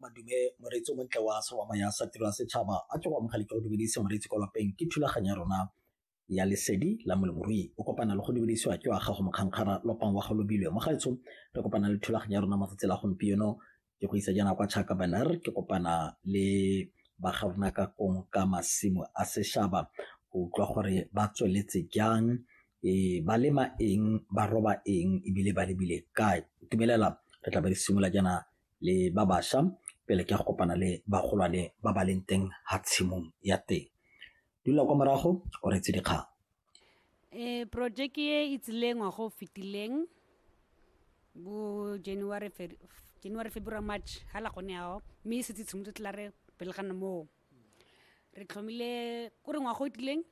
madume moreetsi o montle wa sewama ya sa tiro ya setšhaba a ke go amogele ke go dumedise moreetsi kwa lapeng ke thulaganyo ya rona ya lesedi la moleborui o kopana le go dumedisiwa ke wa gago mokgankgara lopang wa golobilwe mo gaetsho re kopana le thulaganyo ya rona matsatsi la gompieno ke go isa jaana kwa chaka baner ke kopana le bagarona ka kong ka masimo a sešhaba go utlwa gore ba tsweletse jang e ba lema eng ba roba eng ebile ba lebile kae tumelela re tla ba di simolola jaana le ba bašwa pele ke ya go kopana le bagolwane ba ba leng teng ga tshimong ya teng dula kwa morago o retse dikgang um projeke e e tsileng wa go fetileng bo january january february march ga la gone yao mme e setse tshimotse tla re pele ga moo re tlhomile ko re ngwaga o tileng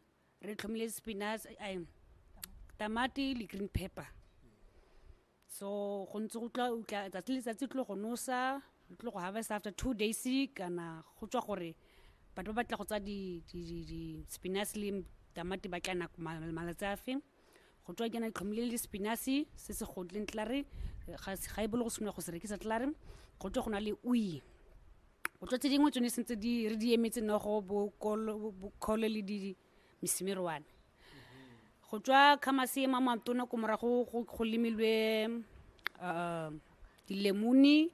re tlhomile spinach ai, tamati le green pepper so go ntse go tla utla tsatsi le tsatsi tlo go nosa re tlo go harvest after two days kana go tswa gore batho ba batla go tsa di di di, di spinach le tamati ba tla nako ma- malatsi a fe go tswa ke na tlhomile le spinach se se godleng tlare ga se- ga e bolo go senoa go se rekisa tlare go tswa go na le ui o tlo tse dingwe tsone sentse di re di emetse no go bokgole le di mesimerwane go tswa kgamasee ma matona ko morago go lemilwe um dilemone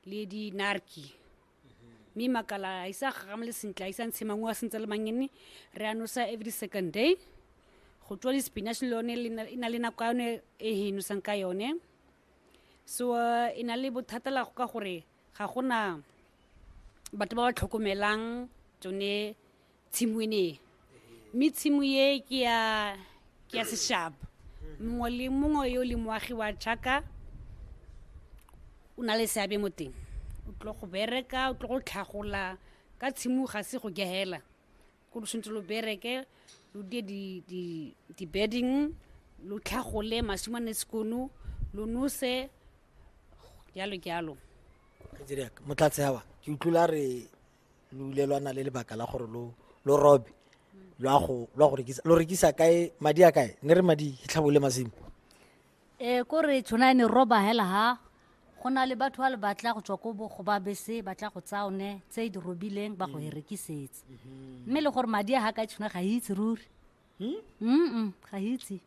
le dinarki mme makala a isa gagame le sentle a isa ntshe mangwe a sentse le mangene re a nosa every second day go tswa di-spinach le yone e na le nako ya yone e he nosang ka yone so e na le bothata la go ka gore ga gona batho ba ba tlhokomelang tsone tshimo ene mme tshimo ye ke ya ke ya seshaba mongwe le mongwe yo le moagi wa jaka o na le seabe mo teng o tlo go bereka o tlo go tlhagola ka tshimo ga se go gehela ko lo tshwanetse lo bereke lo die di-bedding lo tlhagole masimo a ne sekono lo nose jalo jalo kajeriak motlatse awa ke utlwila re lo ile lwana le lebaka la gore lo lo robe lo a go lo a go rekisa lo rekisa kae madi a kae ne re madi tlhabole masimo e ko re tshwana ne roba hela ha go na le batho ba le batla go tswa ko bogo ba bese ba tla go tsaone tse di robileng ba go e rekisetse mme le gore madi a ga ka tshwana ga itse ruri mm ga itse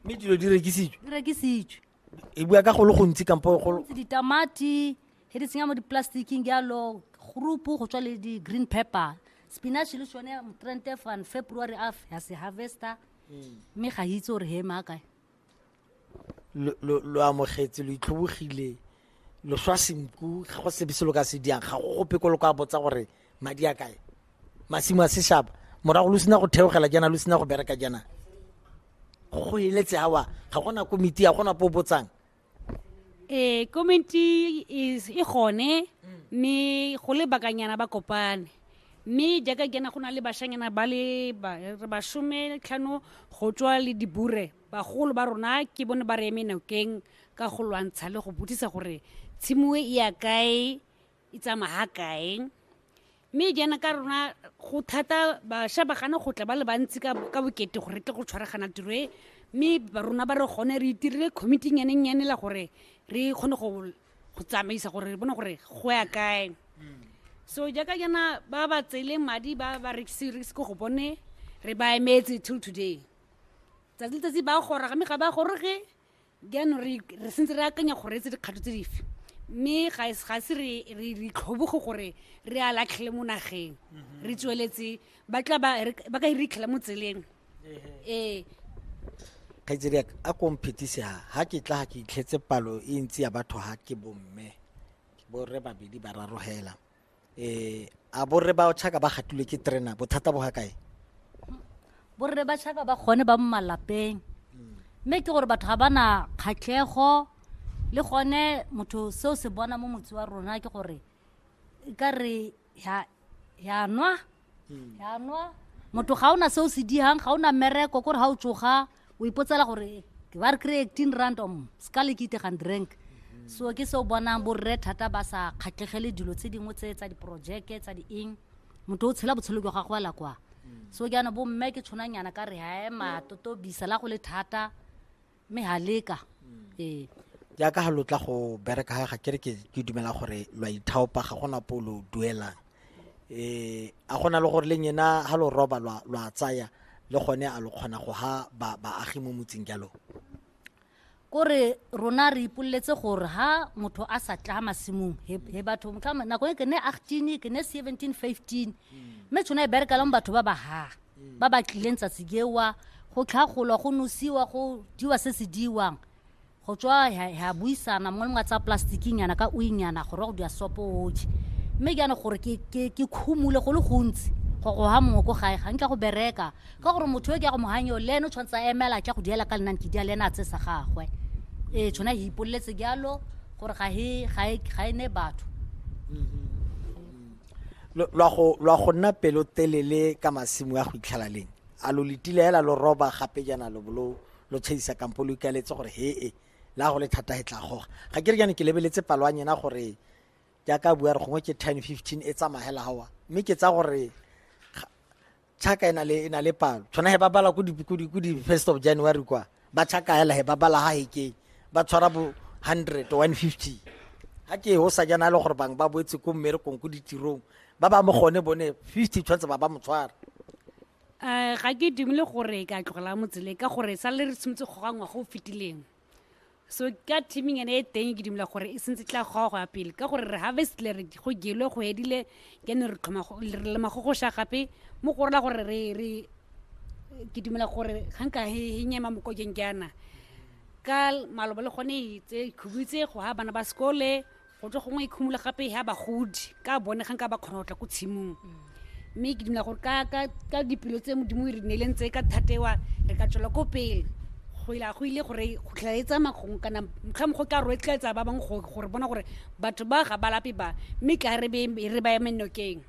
mme dilo di rekisitswe di rekisitswe e bua ka go le gontsi kampo go Ntse ditamati he di tsenya mo di-plasticking jalo groupu go tswa le di-green pepper spinach le sone motrente fan february af ya se harvester mme ga itse gore he maa kae lo amogetse lo itlhobogile lo swa senku ga go sebe se lo ka se diang ga go gope ko lo ka botsa gore madi a kae masimo a seshaba morago lo sena go theogela jaana lo sena go bereka jaana go eletse awa ga gona komiti ya gona po botsang ee komenti e gone mme go le bakanyana ba kopane mme jaaka kena go na le bashanyana ba le bashome tlhano go tswa le dibure bagolo ba rona ke bone ba re eme nokeng ka go lwantsha le go botsisa gore tshimo e ya kae e tsamaya ha kae mme jaana ka rona go thata bašwa ba gana go tla ba le bantsi ka ka bokete gore tle go tshwaragana tiro e mme ba rona ba re gone re itirile committee nyanennyane la gore re kgone go go tsamaisa gore re bone gore go ya kae so jaaka jaana ba ba tseele madi ba ba rekise rekise ko go bone re ba emetse till today tsatsi letsatsi ba gora game ga ba goroge jaanong re re sentse re akanya gore etse dikgato tse dife mme ga e- ga se re re re itlhoboge gore re a latlhele mo nageng re tsweletse ba tla ba re- ba ka e ritlhela mo tseleng ee kgaitsedi yaka a ko mphetise ha ha ke tla ga ke itlhetse palo e ntsi ya batho ha ke bomme borre babedi ba raro hela eh a borre ba tšhaka ba gatilwe ke terena bothata bo ga kae borre ba tšhaka ba gone ba mo malapeng mme ke gore batho ga ba na kgatlhego le gone motho seo se bona mo motse wa rona ke gore e ka re ya nwa jaanwa motho ga o na se o se digang ga o na mmereko kore ga o tsoga o ipotsela gore ke ba re kry eighteen rand om se ka le ke itegang drink so ke se o bonang borre thata ba sa kgatlhegele dilo tse dingwe tse tsa diporojeke tsa dieng motho o tshela botshelo jwa gagwe ala kwa so jaana bomme ke tshwanang yana ka re hae matotobisa la go le thata mme ha leka ee jaaka ga lo tla go bereka ga ga kere ke ke dumela gore lo a ithaopa ga gona po lo duelang eh a gona le gore le nyena ha lo roba lwa lwa tsaya le gone a lo kgona go ha ba baagi mo motseng jalo kore rona re ipoleletse gore ha motho a sa tla masimong he he batho motlhama nako e ke ne 18 ke ne 17 15 mme tshwana e bereka le mo batho ba ba ha ba ba tlileng tsatsi kewa go tlhagolwa go nosiwa go diwa se se diwang go tswa ya buisana mongwe le mongwe a tsaya plastiking yana ka uinyana gore wa go dira sopo oje mme ke yana gore ke khumule go le gontsi go go ha mongwe ko gae ga nkitla go bereka ka gore motho yo ke ya go mohanyeo le ene o tshwanetse a emela tla go diela ka lenane ke dia le ene a tse sa gagwe ee tshwana e ipoleletse jalo gore ga e ne batho mm-hmm. lwa go lwa go nna pelotelele ka masimo a go itlhela leng a lo letile hela lo roba gape jana lo bolo lo tshedisa kampo lo ikaletse gore he e la go le thata he tla goga ga ke re jane ke lebeletse palo a nyena gore jaaka bua re gongwe ke ten fifteen e tsamagela gawa mme ke tsa gore chaka e na le e na le palo tshwana he ba bala ko di ko di ko di first of january kwa ba chaka hela he ba bala ha heke ba tshwara bo 100 150 ha ke ho sa jana le gore bang ba boetse ko mmere kong ko ditirong ba ba mo gone bone 50 tshwanetse ba ba mo tshwara um ga ke dumele gore ka tlogela motsele ka gore sa le re tshwanetse go gangwa go fetileng so ka teaming ene e teng ke dumela gore e sentse tla goa go ya pele ka gore re harvestile re go gelwe go edile ke ne re tlhoma re lema go go sha gape mo go rela gore re re ke dumela gore ga nka he nyema mokokeng ke ana ka malobo le gone e tse khubutse go ha bana ba sekole go tlo gongwe e khumula gape ya bagodi ka bone ga nka ba kgona go tla ko tshimong mme ke dumela gore ka- ka ka dipelo tse modimo e re neileng tse ka thatewa re ka tswela ko pele go ila go ile gore go tlhela e tsamaya gongwe kana motlha mogwe ka roetlaetsa ba bangwe go- gore bona gore batho ba ga ba lape ba mme tla re be- re ba eme nokeng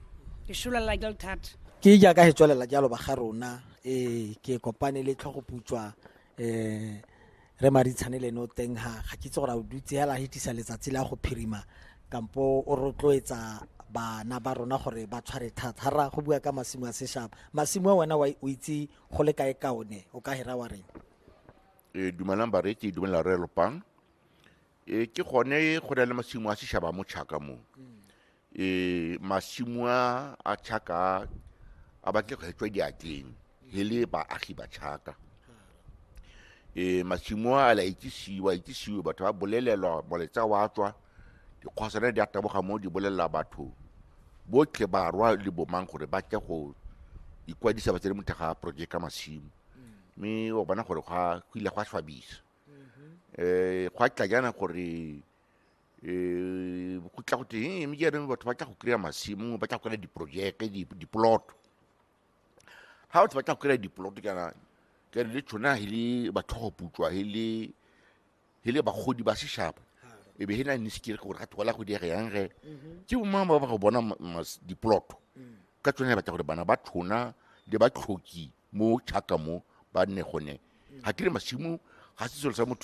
ke sololela jalo thata ke jaaka he tswelela jalo ba ga rona ee ke kopane le tlhogoputswa um re maditshane leno teng ga ga ke itse gore a o dutse hela a hetisa letsatsi la go phirima kampo o rotloetsa bana ba rona gore ba tshware thata ga ra go bua ka masimo a seshaba masimo a wena wa- o itse go le kae ka one o ka hera wa reng e dumelang bareki dumela re lopang e ke gone go na le masimo a sešaba mo tšhaka mo e masimo a a chaka a- a batle go hetswa diatleng he le baagi ba chaka e masimo a la itsisiwa itsisiwe batho ba bolelelwa moletsa wa tswa dikgwasana di a taboga mo di bolelela batho botlhe barwa le bomang gore ba tle go ikwadisa ba tsene mo thega project ka masimo mme wa bona gore gwa go ile gwa swabisa um gwa tla jana gore um go tla go teng mme jaanong batho ba tla go kry-a masimo ba tla go kry-a diprojeke dipoloto ga batho ba tla go kry-a dipoloto kana kere le tshona he le batlhogoputswa he le he le bagodi ba seshaba e be he na ne se kere gore ga thola go diega yang ge ke bomang ba ba go bona ma- mas- dipoloto ka tsone batla gore bana ba tshona le ba tlhoki mo chaka mo ba nne gone ga kere masimo ga se selo sa motho